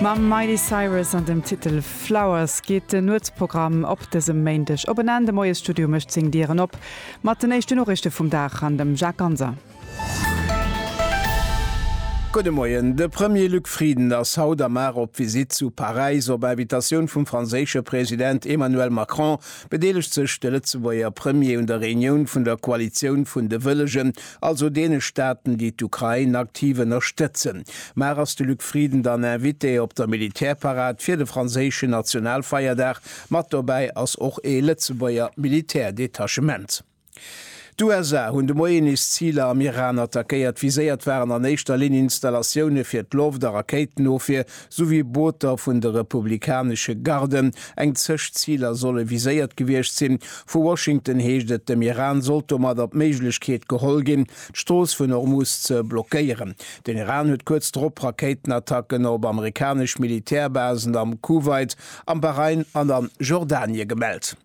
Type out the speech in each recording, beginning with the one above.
Mam Miley Cyrus an dem Titel Flowers geet den Nuetsprogramm op dësem Méindeg op en Enn. De Moiesstudio mécht seng Dieren op mat den éischte Noriichte vum Dag an dem Jacques Ganser. Gudde Moien. De Premier Luc Frieden ass haut am Mar op Visitt zu Paräis. Op Invitatioun vum franséische President Emmanuel Macron bedeelegt sech de Lëtzebuerger Premier un der Reunioun vun der Koalitioun vun de Wëllegen also deene Staaten, déi d'Ukrain aktiv ënnerstëtzen. Mar ass de Luc Frieden dann Invité op der Militärparad fir de franséischen Nationalfeierdag? Mat dobäi ass och ee Lëtzebuerger Militärdetachement. D'USA hunn de Moien nees Ziler am Iran attackéiert. Viséiert waren an éischter Linn Installatioune fir d'Loft a Rakéitenofwier, souwéi Booter vun de republikanesche Garden, eng Zeg Ziler solle viséiert gewiescht sinn. Vu Washington heescht et, dem Iran sollt domadder d'Méiglechkeet geholl ginn, d'Strooss vun Hormuz ze blockéieren. Den Iran huet kuerz drop Rakéitenattacken op amerikanesch Militärbasen am Kuwait, am Bahrain an a Jordanie gemellt.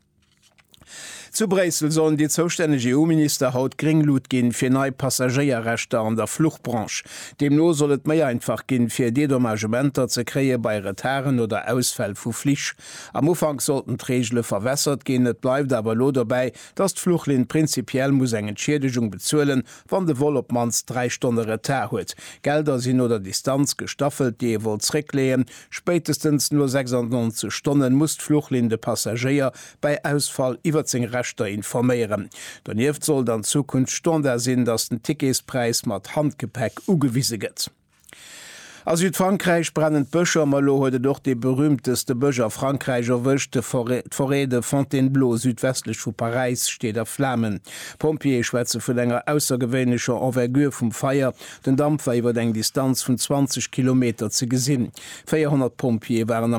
Zu Bréissel sollen déi zoustänneg EU-Minister haut gréng Lut ginn, fir nei Passagéierrechter an der Fluchbranche. Deemno soll et méi einfach ginn, fir Dedommagementer ze kréie bei Retarden oder Ausfäll vu Flich. Am Ufank sollten d'Reegele verwässert ginn, et bleift awer elo dobäi, datt d'Fluchlinn prinzipiell muss eng Entschiedegung bezuelen, wann de Vol op d'mannst dräi Stonne Retard huet. Gelder sinn no der Distanz gestaffelt, déi ee wollt zréckleeën, Spéitestens no 96 Stonnen muss d'Fluchlinn de Passagéier bei Ausfall iwwert seng Rechter informéieren. Donieft sollt an Zukunft Standard sinn, dass den Ticketspräis mat Handgepäck ugewise gëtt. A Südfrankräich brennen d'Bëscher, ma elo huet et och dee berühmteste Bësch a Frankräich erwëscht, d'Forêt de Fontainebleau südwestlech vu Paräis steet a Flamen. D'Pompjeeë schwätze vun enger aussergewéinlecher Envergure vum Feier Den Damp war iwwer eng Distanz vun 20 Kilometer ze gesinn. 400 Pompjeeë waren am.